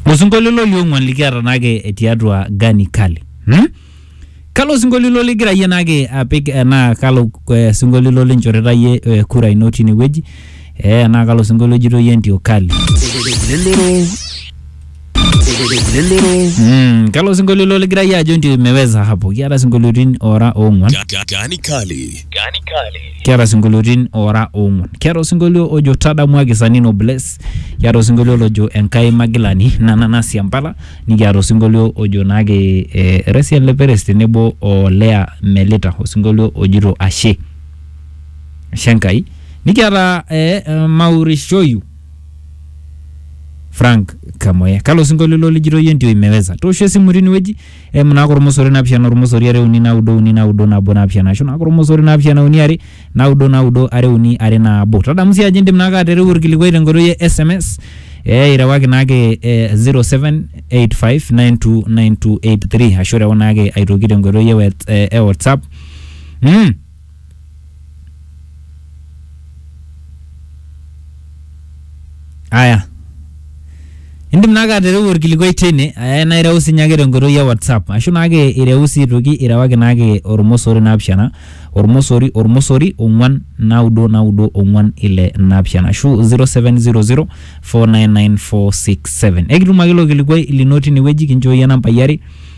osinkolio ilo liong'uan likiata naake tiatua gani kali hmm? kalo sinkolio ilo ligira yie naake apik eh, naa kalo eh, sinkolio ilo linchorita yie eh, kura ino tine wueji eh, naa kalo sinkolio ejito yie ntio kali Elelero. Elelero. mm, kalo sinkolio ilo ligira yie ajo ntio imeweza hapo kiata sinkoliotin ora ong'uan Ga- ga- Gani kali. Gani kali. kiata sinkoliotin ora ong'uan kiata osinkolio ojo tadamuaki sanino bless Kiata osinkolio lojo Enkai Magilani nana nasia mpala, nikiata osinkolio ojo naake Resian Leperes tenebo o Lea Melita osinkolio ojito Ashe, Ashe Enkai. Nikiata eh, Maurishoyu Frank Kamoya. Kalo sinkolio ilo lijito iyie ndio imeweza. Toosho esimu tinewueji eimu naake ormosori naapishana ormosori are uni naudo uni naudo nabo naapishana ashu naake ormosori naapishana uni are naudo naudo are uni are nabo tadamu sii ajo indim naake atereu orkilikuai tenkoitoi e sms ee irewaki naake eh, 0785929283 ashu rewa naake aitoki tenkoitoi e wet- eh, e whatsapp mm. Aya. Indim naake atereu olkilikuai teine eh, naa ireu sinye ake tenkoitoi e WhatsApp ashu naake ireu sii aitoki irewaki naake olmosori naapishana olmosori olmosori ong'uan naudo naudo ong'uan ile naapishana ashu 0700499467. Ekitum ake ilo kilikuai lino tine wueji kinchooyie nambai are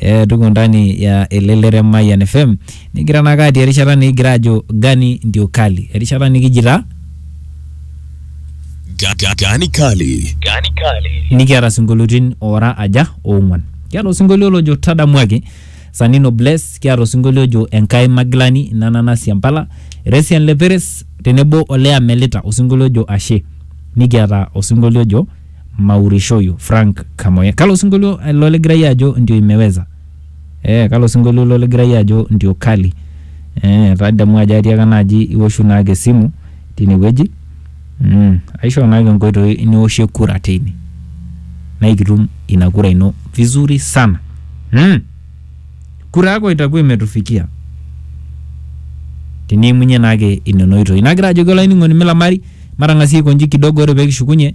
Eh, tuko ndani ya elelere Mayan FM nigira naka atii erishata nikigira ajo gani ndio kali erishata nikijita Ga- ga- Gani Kali. Gani Kali. nikiata sinkolioitin oora aja oong'uan kiata osinkolio lojo tadamuaki sanino bless kiata osinkolio ojo enkai magilani ina nanasi empala resian leperes tenebo olea melita osinkolio ojo ashe nikiata osinkolio ojo maurishoyu Frank Kamoya. Kalo osinkolio ilo ligira iyie ajo ndio imeweza? Eh, kalo osinkolio ilo ligira iyie ajo ndio kali? Eh, tadamu ajo atiaka naaji iwoshu naake esimu tinewueji. Mm, aishoo naake nkoitoi niwoshie kura teine. Na ikitum ina kura ino vizuri sana. Mm. Kura yako itakuwa imetufikia. Tiniimunye naake inena oitoi. Nagira ajoki olainining'oni milamari matang'asie aikonji kidogo ore pekishukunye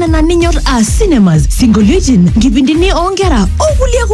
nena ninyor aa cinemas, sinkolioitin, nkipindini oonkera o kulie kumok.